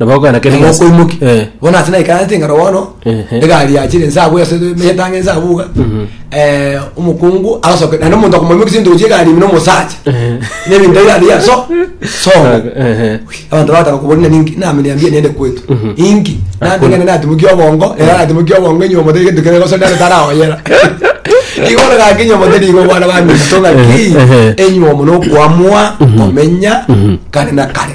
Nabo okogana kere Nabo gese. okoimoki. Eh. Bono ase naikarete ingaro bono, Ehe. egari yachire nse abwo ase megetang'a ense abwo iga. Mhm. Eh, omokungu agasoka, naende omonto akomoimokia chintuko chia egari ime na omosacha. Ehe. Na ebinto bire aria so, songo. Ehe. Abanto bagataka koboria nani inki, name niambie niende kwetu. Mhm. Inki, Hakuna. natigane natimokie obongo, era natimokie obongo enywe omote egento kere gosonda ere taraoyera. Igo bono gaki enywe omote nigo bwana baminto ng'aki, Ehe. enywe omo nokwamwa, komenya, kare na kare.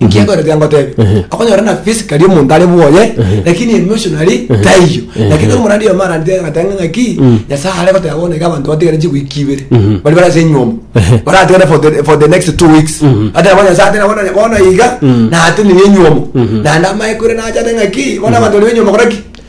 Ekiagera riria ngotebi, Ehe. okonyora na physically omonto are bwoye, Ehe. lakini emotionally Ehe. taiyo. Ehe. Lakini omorandi oyomo arandete agateba ng'a ng'aki, Mm. Nyasaye are goteba bono iga abanto batigare chigwiki ibere, Mhm. bari bare ase enyomba, Ehe. baratigane for the- for the next two weeks. Mhm. Ateba bono Nyasaye ateba bono- bono iga, Mm. natenirie enyomba. Mhm. Naende amaye koira nache ate ng'aki, bono abanto bari b'enyomba koraki?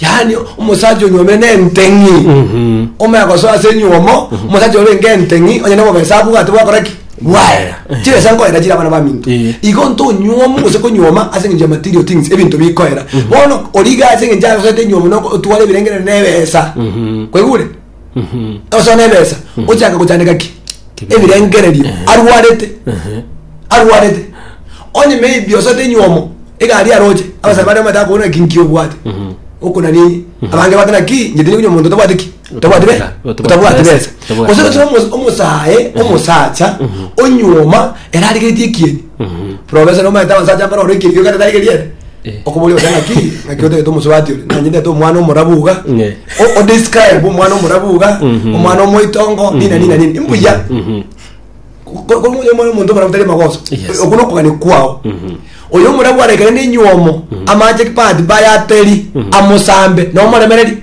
Yaani omosacha onyuome na enteng'i omanya gosoa ase enyuomo omosacha ore nka enteng'i onye na obobesa abwate bwakora ki bwaera chibesa nkoera chire abana baminto Eh. igo ntonyuomu gose konyuoma ase eng'encho ya material things ebinto bikoera bono origa ase eng'encho aye osoete enyuomo na otware ebirengereri na ebesa kwaigure osone ebesa ochake gochandeka ki ebirengererio arwarete arwarete onye maybe osote nyuomo egari aroche abasani bare omata akobona ki nki obwate okona ni abange bakina ki nyete nikunya omonto tabwate ki tabwate be tabwate besa osore sore omosae omosacha onyuoma erarigeretie ekieni Robe ase nomaete abansacha mbare ore ekerio kare tari keria ere. Eh. Okoboria ore ng'aki, ng'aki otagete omosubati ore. Nanye ndete omwana omorabu iga. Eh. O- o describe omwana omorabu iga, Mhm. omwana omoitongo, nina nina nini. Imbuya. Mhm. Ko- ko- oyo omwana omonto omorabu tari amagoso. Yes. Okwo nokogania kwao. Mhm. Oyo omorabu arekane nenywomo, amache kipati bayateri, amosambe, nomoremereri.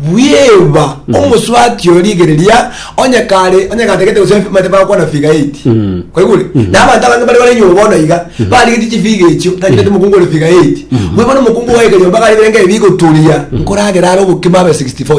Bweba omoswaki oo rigereria, onye kare, onye gatagete gose mate bagokwana figa eiti. Mm. Kwaigure? Mhm. Na abanto abange bare bare nyomba bono iga, Mhm. barigetie chifiga echio, tanyetete mokungu ore figa eiti. Mhm. Bweba na omokungu ogaika nyomba gari bere ng'ai bigoturia, nkoragera are ogokima abe 64 chire.